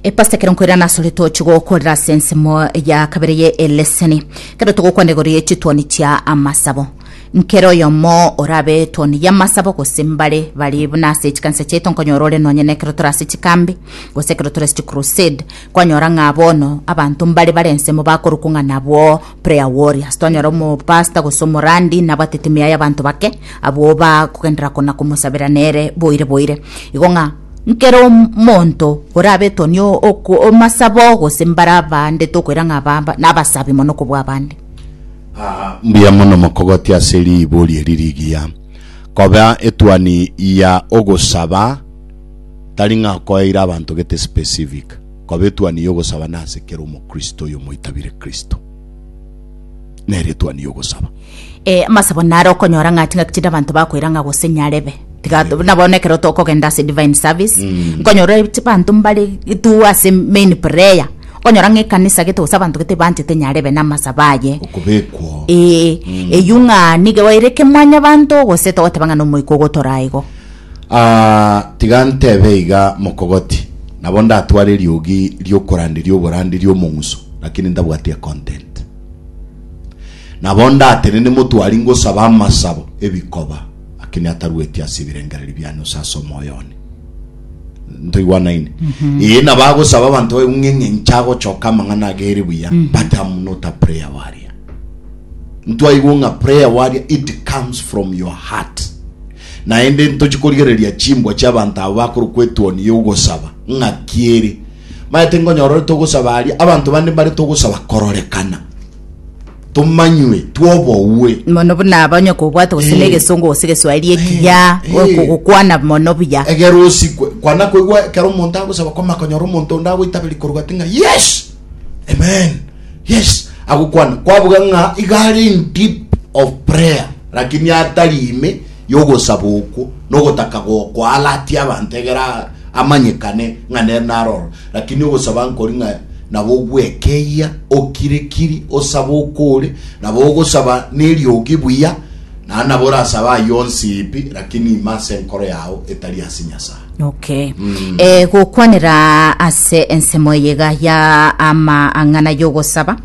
Epasita ekero nkoirana asore toche gokorera ase ensemo ya kabere ye eleseni kero togokwana igoro ye chitwani chia amasabo nkere oyomo orabe etwani ya amasabo gose mbare bari buna ase chikanisa chiaito nkonyora ore nonye na ekero tore ase chikambi gose ekero tore ase chicrusade kwanyora ng'a bono abanto mbare bare ensemo bakorokwa ng'a nabwo prayer warriors twanyora omopasta gose omorandi nabwate timu yaye abanto bake abwo bakogendera kona komosabera nere boire boire igo ng'a nkere omonto orabetwa ni omasabo gose mbare abande tokoira ng'a aba nabasabi mono kobua abande ah, mbuya mono mokogoti ase ribori eri rigiya koba etuani ya ogosaba tari ng'a koeire abanto gete specific Koba etuani y'ogosaba nase kera Omokristo oyomoitabire Kristo, nere etuani y'ogosaba. E, amasabo naro okonyora ng'a chingaki chinde abanto bakoira ng'a gose nyarebe tiga to- na bono ekero tokogenda ase divine service nkonyora ch- banto mbare tu ase main prayer okonyora ng'a ekanisa gete gose abanto gete banchete nyarebe na amasabo aye Okobekwa ee eyio ng'a nigo ere kemwanyabanto gose togoteba ng'a na omoika ogotora igo Aa, tiga ntebe iga, mokogoti, nabo ndatware eriogi ri'okoranderia oboranderia omong'uso, lakini ntabwati econtent. Nabo ndatenene motwari ngosabe amasabo, ebikoba, lakini atarueti ase ebirengererio biane gose ase omoyo one. Ntoigwanaine? Ee, nabo agosaba abanto baye buna ng'a inche agochoka amang'ana age ere buya, but am not a prayer warrior. Ntwaigwe ng'a prayer warrior, it comes from your heart. Naende ntochie korigereria chimbwa chi'abanto aba bakorokwa etuoni y'ogosaba. Ng'aki ere! Maete nkonyora ore togosaba aria, abanto bande mbare togosaba kororekana, tomanywe, twobogwe. mono buna aba onye kobwate gose Eh. negesongo gose egeswahili ekiya Eh, eh. okogokwana mono buya Egere osikwe. Kwana koigwa ekero omonto agosaba kwama konyora omonto onde agoitaberia korwa ati ng'a yes! Amen. Yes, agokwana kwabuga ng'a iga are in deep of prayer lakini atari ime yogosaba okwo nogotaka goko alati abanto egera amanyekane ng'a nere naroro lakini ogosaba nkori ng'a nabo ogwekeia okirekiri osaba okore nabo ogosaba neriogi buya na nabo orasaba ayonsi ipi lakini ime ase enkoro yao etari ase nyasaye Okay. Mm. Eh, gokwanera ase ensemo eyega ya amang'ana y'ogosaba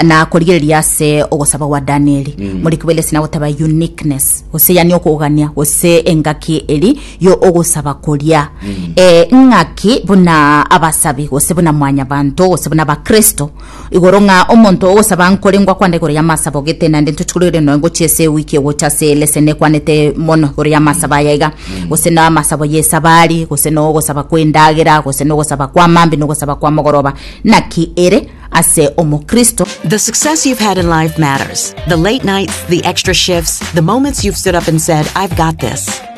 na korigereria ase ogosaba gwa danieli mm. muri kibelesi na goteba uniqueness gose yani okogania gose engaki eri yo ogosaba koria mm. eh, ng'aki buna abasabi gose buna mwanyabanto gose buna abakristo Igoro ng'a omonto ogosaba nkorengwa kwande igoro y'amasaba ogete, naende ntochigurere noe ngochia ase ewiki egocha ase eleseni ekwanete mono igoro y'amasaba aya iga, gose na amasabo y'esabari, gose na ogosaba kw'endagera, gose na ogosaba kw'amambia, na ogosaba kw'amogoroba. Naki ere ase omokristo? The success you've had in life matters. The late nights, the extra shifts, the moments you've stood up and said, I've got this.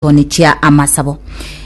Toni chia amasabo.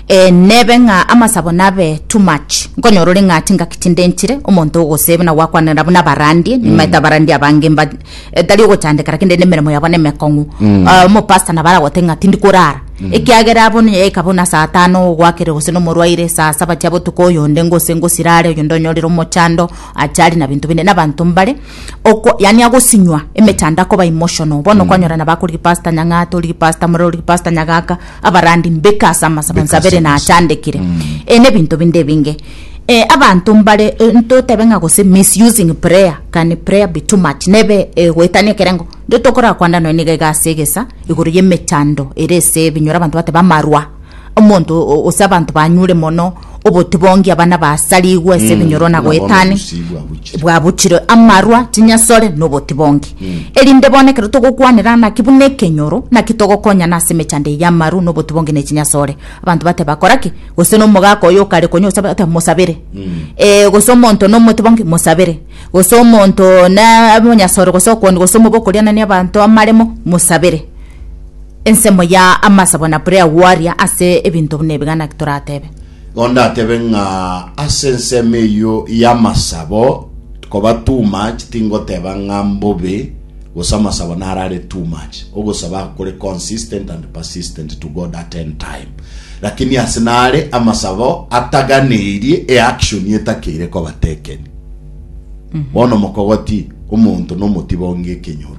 Eh, nebe ng'a amasabo nabe too much. Nkonyora ore ng'a tingaki tindenchire, omonto ogosee buna gwakwanera buna abarandie, nimaete abarandie abange mba eh, tari ogochandeka lakini rende emeremo yabo nemekong'u. Ah, omopasta nabo aragote ng'a tindi korara. Ekiagera abo nonya yaika buna saa tano ogwakere gose nomorwaire saa saba chia botuko oyonde ngose ngosirare oyonde onyorire omochando achari na binto binde. Nabanto mbare oko yaani agosinywa emechando akoba emotional bono kwanyora nabo akorigia pastor nyang'ata origia pastor murere origia pastor nyagaka abarandi mbeka ase amasa bonsi abere nachandekire eh na ebinto binde ebinge eh abanto mbare eh, ntotebe ng'a gose misusing prayer can prayer be too much nebe eh, goetania ekerengo ntotokorara kwanda nonya niga iga ase egesa igoro y'emechando ere ase ebinyoro abanto bateba amarwa Omonto ose abanto banyure mono obotibongi, abana basarigwe ase ebinyoro na goetania, bwabuchire amarwa, chinyasore, na obotibongi. Erinde bono ekero togokwanera naki buna ekenyoro, naki togokonyana ase emechando eye y'amaru, na obotibongi, na echinyasore. Abanto bateba, Kora ki? Gose na omogaka oyo okare konya osabe, oteba, Mosabere. Eh, gose omonto na omotibongi, Mosabere. Gose omonto na omonyasore gose okoni gose omobe okorianania abanto amaremo, Mosabere. Ensemo ya Amasa buna buri agwo aria ase ebinto buna ebi gana ki toratebe? Igo ndatebe ng'a ase ensemo eyio y'amasabo koba too much tingoteba ng'a mbobe, gose amasabo naro are too much. Ogosaba kore consistent and persistent to God at any time. Lakini ase nare amasabo ataganeirie e action etakeire koba taken. Bono mokogoti omonto nomotiba onge ekenyoro.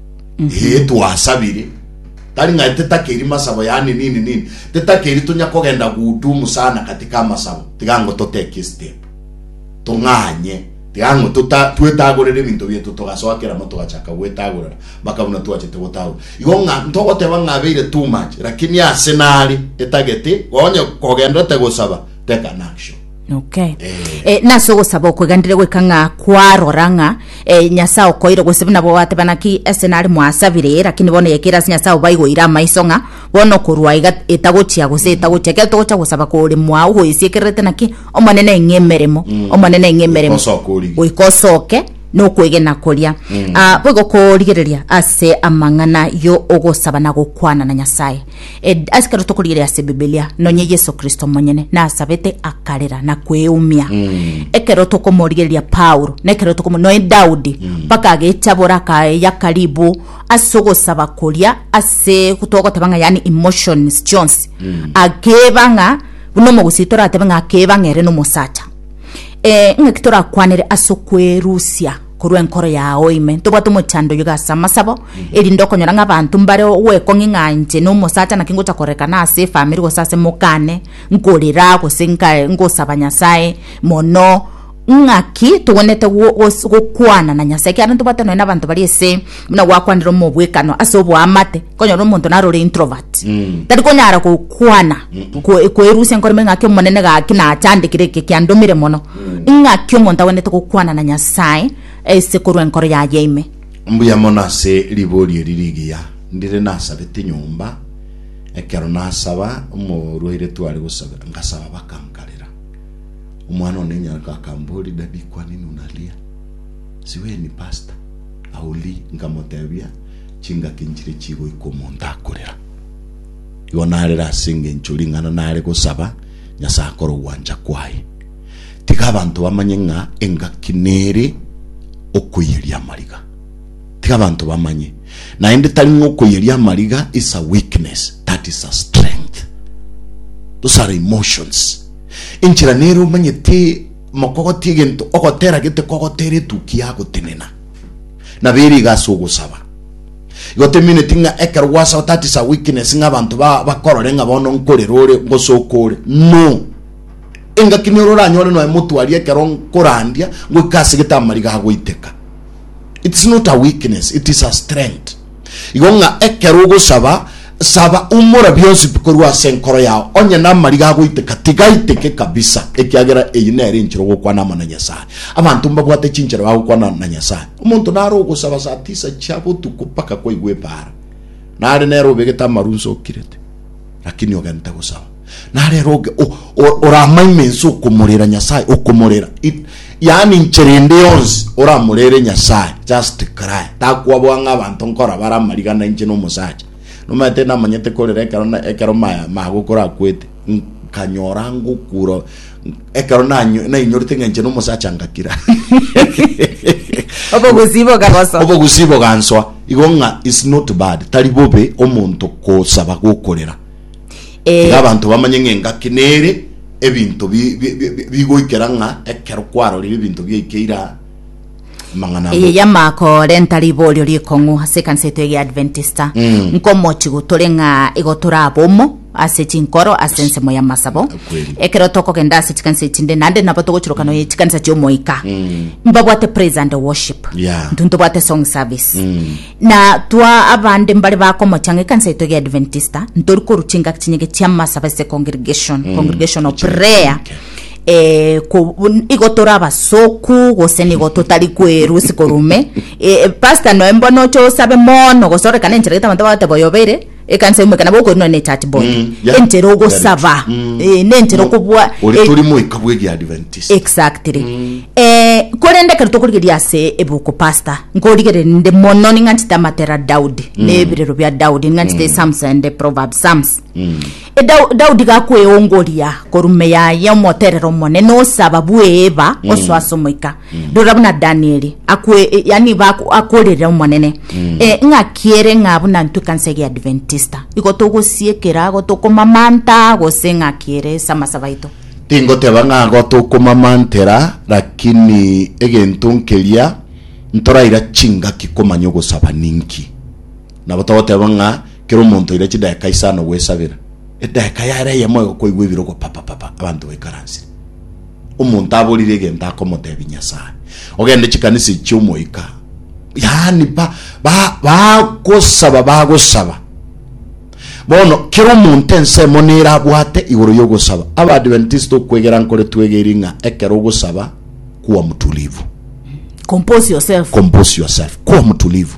Ee, twasabire, tari ng'a titakeri masabo, yaani nini nini, titakeri tonya kogenda guhudumu sana katika amasabo, tiga ng'o totekie step, tong'anye, tiga ng'o tota- twetagorere ebinto bieto, togasoa kera mo togachaka gwetagorera mpaka buna twachete gotagora. Igo ng'a ntogoteba ng'a abeire too much, lakini ase nare etagete, onye kogenderete gosaba, take an action. Okay. Eh, nase ogosaba okweganire goika ng'a kwarora ng'a eh, nyasae okoire gose buna bwateba naki ase nare mwasabire lakini bono yekere ase nyasae obaigoire amaiso ng'a bono okorwa iga etagochia gose etagochia kero togocha gosaba kore mwao goesiekererete naki omonene eng'e emeremo omonene eng'e emeremo Goika osoke orige. goika osoke nokwegena koria Ah, boigo korigereria ase amang'ana yo ogosaba na gokwana na nyasae Ed, ase ekero tokorigereria ase Bibilia, nonye Yeso Kristo omonyene nasabete akarera na kweumia. Ekero tokomorigereria Paulo, na ekero tokomo noe Daudi, mpaka agechabora akayaka ribu ase ogosaba koria ase togoteba ng'a yani emotions chionsi akeba ng'a buna omogusii toratebe ng'a akeba ng'a ere nomosacha. Eh, ng'aki torakwanere ase okwerusia? korwa enkoro yao ime. Ntobwate omochando oyio gase amasabo, erinde okonyora ng'a abanto mbare gwekong'ia ng'a inche na omosacha naki ngocha korekana ase efamiri gose ase mokane, nkorera gose nka- ngosaba Nyasae mono, ng'aki togwenerete go- gos- gokwana na Nyasae ekiagera ntobwate nonya na abanto bari ase. buna gwakwanire omobwekano ase oboamate konyora omonto narore introvert mm. tari konyara gokwana mm. kwerusia nkoreme ng'aki omonene gaki nachandekire eke kiandomire mono mm. ng'aki omonto agwenete gokwana na nyasaye ase korwa enkoro yaye ime mbuya mono ase ribori eri rigiya ndire nasabete nyomba ekero nasaba omorwaire tware gosaba ngasaba bakankarera omwana one nyaraka akambori dadi kwanini unalia Siweni pastor aoli nkamotebia chingaki nchire chigoika omonto akorera. Igo narere ase engencho ring'ana nare gosaba Nyasae akore ogwancha kwaye. Tiga abanto bamanye ng'a engaki nere okoiyeria amariga. Tiga abanto bamanye. Naende tari ng'a okoiyeria amariga is a weakness, that is a strength. Those are emotions. Enchera nere omanyete Mokogotia egento ogotera gete kogotera etuki ya gotenena. Na bere iga ase ogosaba. Igo temineti ng'a ekero gwasaba that is a weakness ng'a abanto ba bakorore ng'a bono nkore rore ngosoka ore. No. Engaki nero oranyore noe motwari ekero nkorandia ngoika ase gete amariga agoiteka. It is not a weakness, it is a strength. Igo ng'a ekero ogosaba, saba umora bionsi pi korwa ase enkoro yao, onye namariga agoiteka, tigaiteke kabisa, ekiagera eyio nere enchera ogokwana amo na Nyasae. Abanto mbabwate chinchera bagokwana na Nyasae. Omonto nare ogosaba saa tisa chia botuko mpaka kwaigwa ebaara, nare nere obegete amaru nsokirete, lakini ogente gosaba. narero oge o- o- oramaime ense okomorera nyasaye okomorera It- yaani nchera ende yonsi oramorere nyasaye just cry takwabwa ng'a abanto nkora bara amariga na inche nomosacha nomanyete namanyete korera ekero na- ekero ma- magokora akwete nkanyora ngokura ekero nanyo- nainyorete ng'a inche nomosacha ngakira Obogusii bokagosoa. obogusibo gansoa igo ng'a is not bad tari bobe omonto kosaba gokorera Tiga Ee, abanto bamanye ng'a engaki nere ebinto bi- bi- bi- bi- bigoikera ng'a ekero kwarorire ebinto biaikeire aa amang'ana eye agoka. y'amaako renta riborio rikong'u ase ekanisa yaito ege ya Adventista Mm. nkomochi gotore ng'a igo torabomo ase chinkoro ase ensemo y'amasabo Kweli. ekero tokogenda ase chikanisa echinde naende nabo togochurukana oye chikanisa chi'omoika mbabwate praise and worship Yeah. ntintobwate song service Mm. Na twa abande mbare bakomochang'a ekanisa yaito egia Adventista, ntori korwa chingaki chinyige chi'amasaba ase congregation, congregation of prayer, eh, ko- un- igo tore abasoku gose nigo totari kwerwa isiko rume Eh, eh, pastor noe mbono oche osabe mono gose orekane enchera gete abanto bagoteba oyobeire Ekanisa ime ekana bokorina ne church boy Mm, yeah. entera ogosaba Yeah, mm. eh, nentera No, okobua ore eh, tori moika bwe ria Adventist. exactly Mm. eh, korende ekero tokorigeria ase ebuku pastor nkorigerere ninde mono ning'anchete amatera daudi mm. nebirero bia daudi ning'anchete mm. psalms and the proverbs psalms Mm. E Dau- daudi gakweongoria korume yaye omoterero omonene osaba bweba mm. osoasa omoika rora buna danieli akwe yani baku- akorerera omonene Eh, ng'akiere ng'a buna ntwe kansa ege adventista igo togosiekera ago tokomamanta gose ng'akiere ase amasaba aito tingoteba ng'a ago tokomamantera lakini egento nkeria ntoraira chingaki komanya ogosaba ninki nabo togoteba ng'a kera omonto oira chidakika isano goesabera edageka yare eyemo igo kwaigwa ebire ogopapapapa abanto baikaransire omonto aborire egento akomotebia Nyasaye, ogende chikanisa echi chi'omoika, yaani ba- ba- bagosaba bagosaba bono kera omonto ensemo nere abwate igoro y'ogosaba abaadventist okwegera nkore twegeri ng'a ekero ogosaba kuwa mutulivu Compose yourself. compose yourself kuwa mutulivu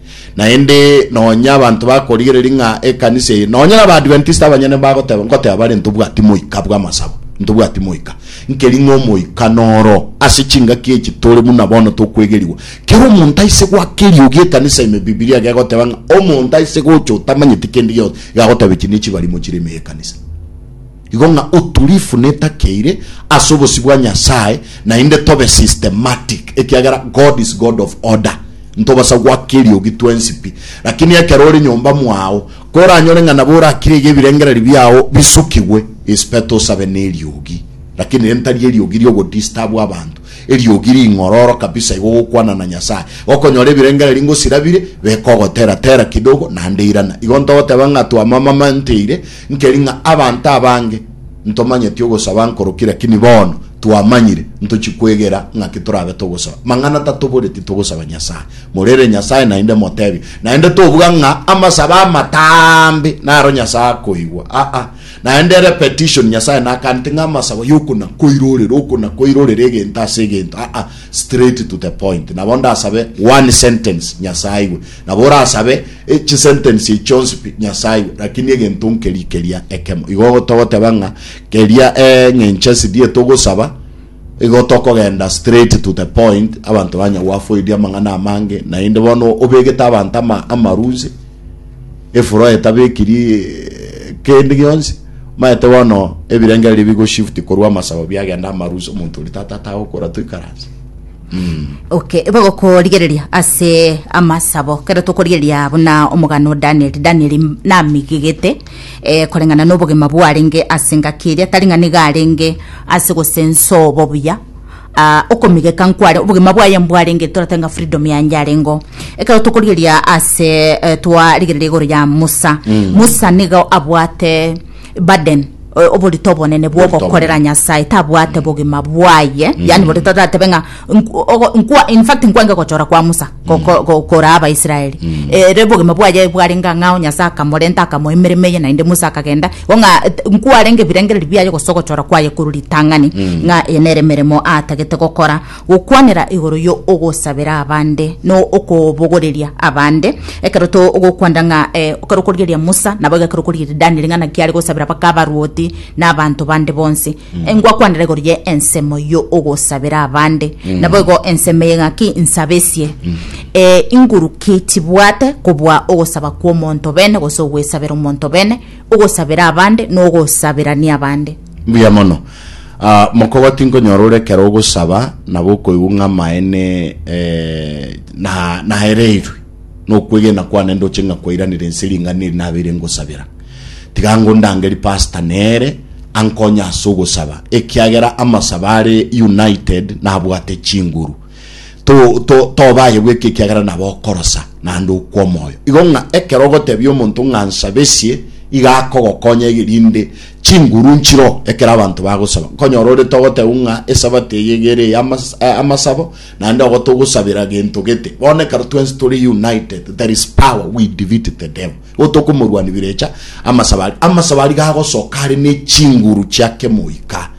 Naende nonya abanto bakorigereria ng'a ekanisa eye, nonya na Abaadventista abanyene mbagoteba, ngoteba bare ntobwati moika bw'amasabo, ntobwati moika. Nkeri ng'a omoika noro ase chingaki echi tore buna bono tokwegerigwa. Kera omonto aise goaka eriogi ekanisa ime, Bibilia gegoteba ng'a omonto aise gocha otamanyeti kende gionsi iga agoteba echi nechibarimo chire ime y'ekanisa. Igo ng'a utulifu netakeire ase obosio bwa Nyasae naende tobe systematic ekiagera God is God of order. Ntobasa gwaka eriogi twensi pi. Lakini ekero ore nyomba mwao, koranyore ng'a nabo orakire iga ebirengererio biao bisukigwe, is better osabe neriogi. Lakini ere ntari eriogi riogodistabu abanto, eriogi ring'ororo kabisa igo gokwana na Nyasae. Gokonyora ebirengererio ngosirabire, beka ogotera tera kidogo naende irana. Igo ntogoteba ng'a twamamamanteire Nkeri ng'a abanto abange ntomanyeti ogosaba nkorokire lakini bono twamanyire ntochi kwegera ng'aki torabe togosaba. Mang'ana tatobori titogosaba Nyasae. Morere Nyasae naende motebie. Naende tobuga ng'a amasaba amatambe naro Nyasae akoigwa. Aa. Naende ere petition Nyasae nakaneti ng'a amasaba yokona koirorera okona koirorera egento ase egento. Aa. Straight to the point. Nabo ndasabe one sentence Nyasae aigwe. Nabo orasabe e chisentensi echi chionsi pi Nyasae iwe, rakini egento nkeria keria ekemo. Igo togoteba ng'a keria eng'encho esidie togosaba, igo tokogenda straight to the point, abanto banya gwafoidia amang'ana amange, naende bono obegete abanto ama, amarusi, efuro etabekiri eh, kende gionsi, maete bono ebirengererio bigoshift korwa amasabo biagenda amarusi, omonto oria tata atagokora toikaranse. Okay, bagokorigereria ase amasabo kero tokorigereria buna omogano o Danieli Danieli m- namigigete eh, koreng'ana n'obogima bwarenge ase engaki eria tari ng'a niga arenge ase gosensa obobuya ah, okomigeka nkware obogima bwaye mbwarenge toratebe ng'a freedom yanje arengo ekero tokorigereria ase eh, twarigereria igoro ya Musa Musa nigo abwate Baden, o- oborito obonene bwa Oborito ogokorera obonene. nyasaye tabwate bogima bwaye yani boria taratebe ng'a nku- ogo- nkwa- in fact nkwange gochora kwa musa go- go- go- koraa abaisraeli ere bogima bwaye bwarenge ang'ao nyasaye akamorenta akamoa emeremo eye naende musa akagenda igo ng'a et- nkwarenge ebirengererio biaye gose ogochora kwaye korwa ritang'ani ng'a eye nere emeremo atagete gokora Gokwanera igoro yo ogosabera abande no okobogoreria abande. Ekero to ogokwanda ng'a e, ekero okorigereria Musa, nabo egekero okorigereria Daniel ng'a naki are gosabera baka abaruoti na abanto bande bonsi. E, Ngwakwanera igoro ye ensemo yo ogosabera abande. Nabo igo ensemo eye ng'aki nsabesie. E, inguru ki chibwate kobua ogosaba kwa omonto bene gose ogwesabera omonto bene, ogosabera abande no ogosaberania abande. Mbuya mono. Ah, mokobo tinkonyora ore ekero ogosaba nabo okoigwa ng'a amaene eh, na naereirwe nokwegena kwane ndoche ng'a kwairanire ense ring'ana eri nabeire ngosabera. Tiga ngondange ri pastor nere ankonye ase ogosaba ekiagera amasaba are united nabwate chinguru to to tobaye gweka ekiagera nabo okorosa naende okwa omoyo igo ng'a ekero ogotebia omonto ng'a nsabesie iga akogokonya erinde chinguru nchiro ekero abanto bagosaba, nkonyora ore togoteba ng'a esabato eye iga ere ey'amasabo, naende ogo togosabera gento gete. Bono ekero twensi tore united, there is power, we defeat the devil. Igo tokomorwania birecha amasabo aria. Amasabo aria iga agosoka are nechinguru chia kemoika.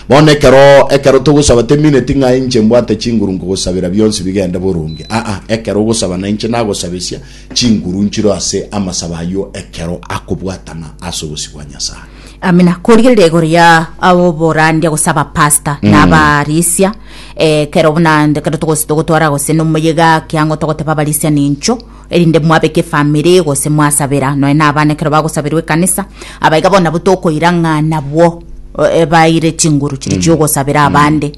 Bono ekero ekero togosaba temineti ng'a inche mbwate chinguru nkogosabera bionsi bigende boronge, aa, ekero ogosaba nainche nagosabesia, chinguru nchiro ase amasabo ayio ekero akobwatana ase obosio bwa Nyasae. Amina korigereria igoro ya oborandia gose abapasta mm. na abarisia eh, kero buna kero togose togotwara gose nomoyega kiango togoteba abarisia nincho erinde mwabeka efamiri gose mwasabera noe na abana kero bagosaberwa ekanisa abaiga bona botokoira ng'a nabwo eh, baire chinguru chiri mm. chiogosabera mm. abande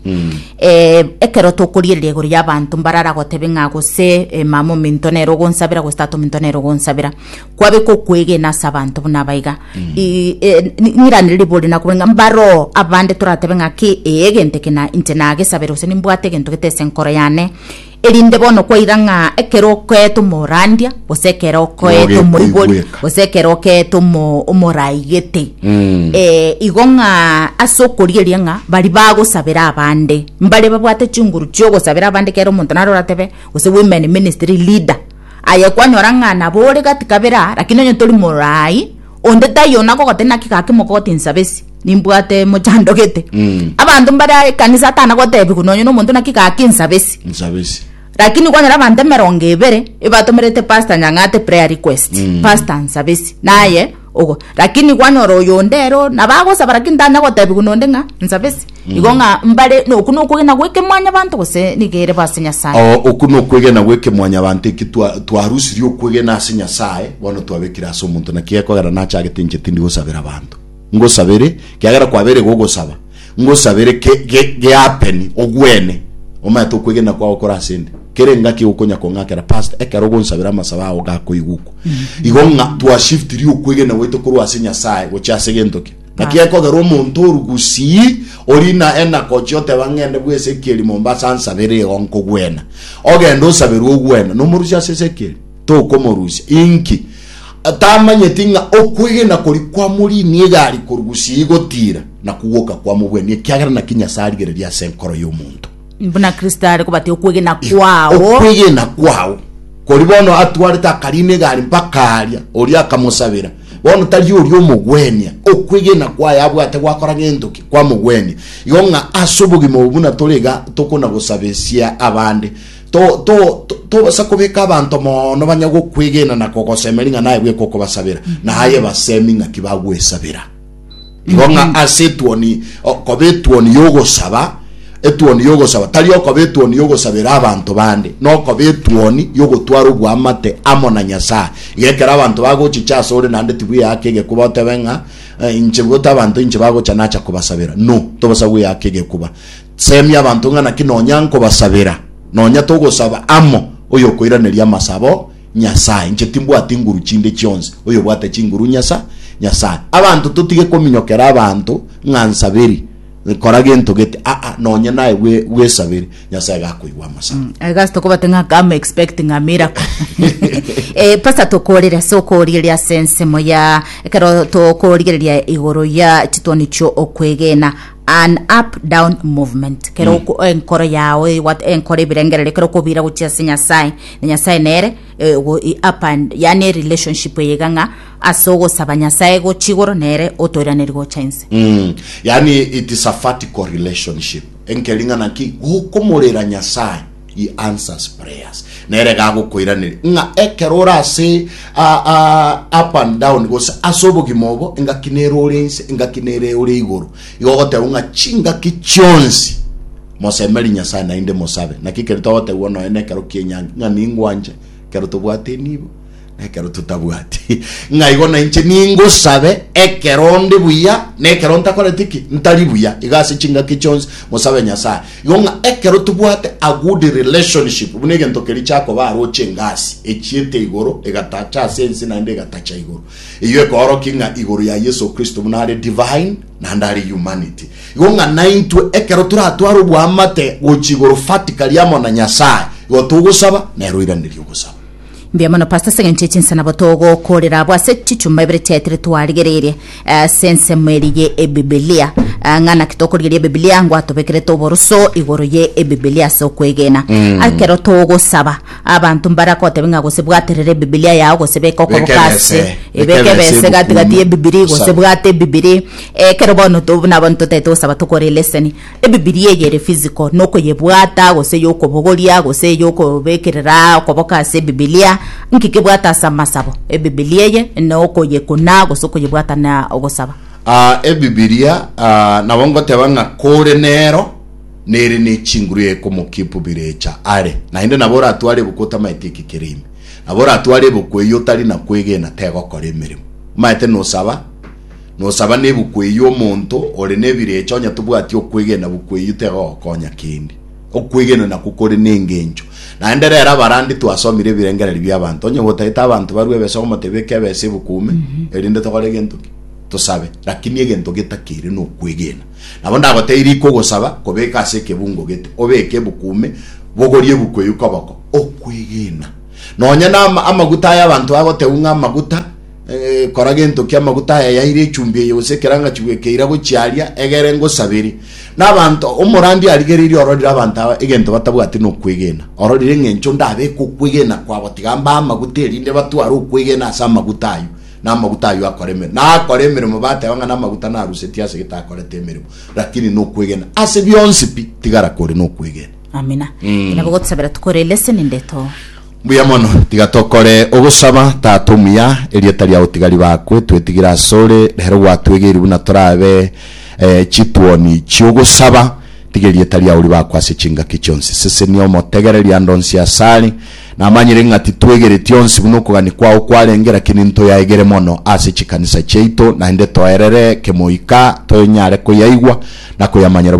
Eeh, ekero tokoriereria igoro y'abanto mbarare agotebe ng'a gose eh, mama ominto nere ogonsabera gose tata ominto nere ogonsabera, kwabeka okwegena ase abanto buna aba iga. I- eh, ni- nirane ribe ore nakobua ng'a mbaroo abande toratebe ng'a ki, ee egento eke na inche nagesabera gose nimbwate egento gete ase enkoro yane, Erinde bono kwaira ng'a ekero okoeete omorandia, gose ekero okoeete Moge omoibori, koigweka. gose ekero okeete omo- omoraigete Mm. Eh, igo ng'a ase okorieria ng'a bari bagosabera abande mbare babwate chinguru chiogosabera abande kera omonto naro oratebe gose women ministry leader aye kwanyora ng'a nabo ore gati kabere aa, lakini onye tori moraai Onde taiyo ona gogote naki gake mogote ensabesi nimbwate mochandogete Mm. abanto mbare a ekanisa atana gotebigwa nonye nomonto naki gake ensabesi nsabesi lakini kwanyora abanto emerongo ebere ebatomerete pastor nyang'ate prayer request Mm. pastor nsabesi naye ogo lakini kwanyora oyo onde ero nabagosaba lakini tanya gotebigwa nonde ng'a nsabesi igo ng'a mbare nokwo nokwegena gweke mwanyabanto gose nigo ere base Nyasae. O, oku nokwegena gweke mwanyabanto eki twa- twarusirie okwegena ase Nyasae bono twabekire ase omonto naki gekogera nachagete inche tindi gosabera abanto ngosabere kiagera kwabeire gogosaba ngosabere ke- ge- geapeni ogwene omaete okwegena kwao kore ase nde kere engaki okonya kong'akera past ekero ogonsabera amasabo ao gakoigukwa igo ng'a twashiftirie okwegena gwaito korwa ase Nyasae gochia ase gento ki Naki ekogerwa omonto oru gusii ori na enakochi oteba ngende bwe esekeli Mombasa nsabere igo nkogwena. Ogende osaberwe ogwena nomorusia ase esekeli? Tokomorusia. Inki? Tamanyeti ng'a okwegena kori kwamoriinie egari koru gusii gotira na kugwoka kwamobwenia ekiagera naki Nyasae arigereria ase enkoro y'omonto. Buna Kristo are kobatia okwegena kwao. Okwegena kwao. Kori bono atwarete akarina egari mpaka aria, oria akamosabera. Bono tari oria omogwenia, okwegena kwaye abwate gwakora gento ki? Kwamogwenia. Igo ng'a ase obogima obo buna tore iga tokonagosabesia abande, to, to, to, tobasa kobeka abanto mono banya gokwegena na kogosemeria ng'a naye bweka okobasabera, na aye basemi ng'aki bagwesabera. Igo ng'a mm-hmm. ase etuoni okoba etuoni y'ogosaba etuoni y'ogosaba tari okoba etuoni y'ogosabera abanto bande nokoba etuoni y'ogotwara obwamate amo na nyasaye igekera abanto bagochicha ase ore naende tibweyaka egekuba otebe ng'a eh, inche gota abanto inche bagocha nacha kobasabera no tobasa gweyaka egekuba semia abanto ng'a naki nonya nkobasabera nonya togosaba amo oyo okoiraneria amasabo Nyasae. Inche timbwati nguru chinde chionsi, oyobwate chinguru Nyasa, Nyasae. Abanto totige kominyokera abanto ng'a nsaberi, kora gento gete, aa, nonye naye bwe, bwesaberi, Nyasae gakoigwa amasabo. I guess tokobate ng'a come expecting a miracle. Eh, Pastor tokorire ase okorigereria ase ensemo ya ekero tokorigereria igoro ya chitwani chio okwegena an up down movement kero mm. enkoro yao enkoro ebirengererio kero okobira gochia ase nyasaye na nyasae nere eh, ogo- i- apa yani erelationship eye iga ng'a ase ogosaba nyasae gochi igoro nere otoiraneria gocha inse Mm. yaani it is a vertical relationship enkering'ana ki gokomorera nyasaye he answers prayers nere gagokoiraneri ng'a ekero ore ase a- a- up and down gose ase obogima obo engaki nere ore inse engaki nere ore igoro igo ogoteba ng'a chingaki chionsi Mosemerie Nyasae naende mosabe. Naki ekero togotegwa nonya nekero ki'enyangi, ng'a ningwanche ekero tobwate enibo, na ekero totabwati, ng'a igo nainche ningosabe ekero ndi buya, na ekero ntakoreti ki? Ntari buya. Iga ase chingaki chionsi mosabe Nyasae. Igo ng'a ekero tobwate a good relationship, buna egento keria chiakoba aroche engasi, echiete igoro, egatacha ase ense naende egatacha igoro. Eyio ekoorokia ng'a igoro ya Yeso Kristo buna are divine, naende are humanity. Igo ng'a naintwe ekero toratware oboamate gochia igoro vertically amo na Nyasae, igo togosaba, nere oiranerie ogosaba. Mbuya mono pastor ase engencho y'echinsa nabo togokorera abwo ase chichuma ibere chiaetire twarigereirie eh, ase ensemo eri ye ebibilia Ah, ng'a naki tokorigeria ebibilia ngwatobekerete oboroso igoro ye ebibilia ase okwegena ekero togosaba Abanto mbaragotebi ng'a gose bwaterera Ebibilia yao gose beka okoboko ase, ebeka ebese gati-gati y'Ebibilia eye gose bwate Ebibilia eye. Ekero bono to buna abana totagete gosaba tokore leseni, Ebibilia eye ere physical, nokoyebwata gose yokobogoria gose eyokobekerera okoboko ase Ebibilia, nki kebwate ase amasabo? Ebibilia eye nokoyekuna gose okoyebwata na ogosaba. Ebibilia nabo ngoteba ng'a kore nero. nere ne chinguru ya ekomokia epubire echa are, naende nabo oratware ebuku otamaete ekekera ime, nabo oratware ebuku eyio otari na kwegena tegokora emeremo. Omaete nosaba, nosaba nebuku eyio omonto ore nebire echa onye tobwati okwegena buku eyio tegogokonya kende. Okwegena nakwo kore nengencho. Naende rero abarandi twasomire ebirengererio biabanto, onye gotaete abanto barue ebesa ogomotebia eke ebesa ebuku ime, erinde tokore gento ki? Tosabe. Lakini egento getakere nokwegena. Nabo ndagoteirie iko ogosaba kobeka ase ekebungo gete, obeke ebuku ime, bogorie ebuku eyio koboko, okwegena, nonya na amaguta aya abanto bagotebwa ng'a amaguta, eh, kora gento ki amaguta aya yaire echumbi eye gose ekerangachi bweka eira gochia aria, egere ngosaberie. Na abanto, omorandia arigereirie ororire abanto aba egento batabwati na okwegena, ororire eng'encho ndabeke okwegena kwabo, tiga mbae amaguta erinde batware okwegena ase amaguta ayio. namaguta ayio akore emeremo, na akore emeremo bateba ng'a namaguta narusetie ase gete akorete emeremo, rakini nokwegena ase bionsi pi, tigara kore nokwegena. Amina. Mm. Nabo gotusabera tukore lesson ndeto. Mbuya mono, tiga tokore ogosaba, Tata omuya, erieta riao tiga ribakwe, twetigire asore, rero gwatwegeiri buna torabe eh, chituoni chi'ogosaba, tiga erieta riao ribakwe ase chingaki chionsi, sesenia omotegereri ande onsi asare, Namanyire ng'a titwegereti onsi buna okogania kwao kwarenge, lakini ntoyaegere mono ase chikanisa chiaito, naende toerere kemoika toyonyare koyaigwa na koyamanyera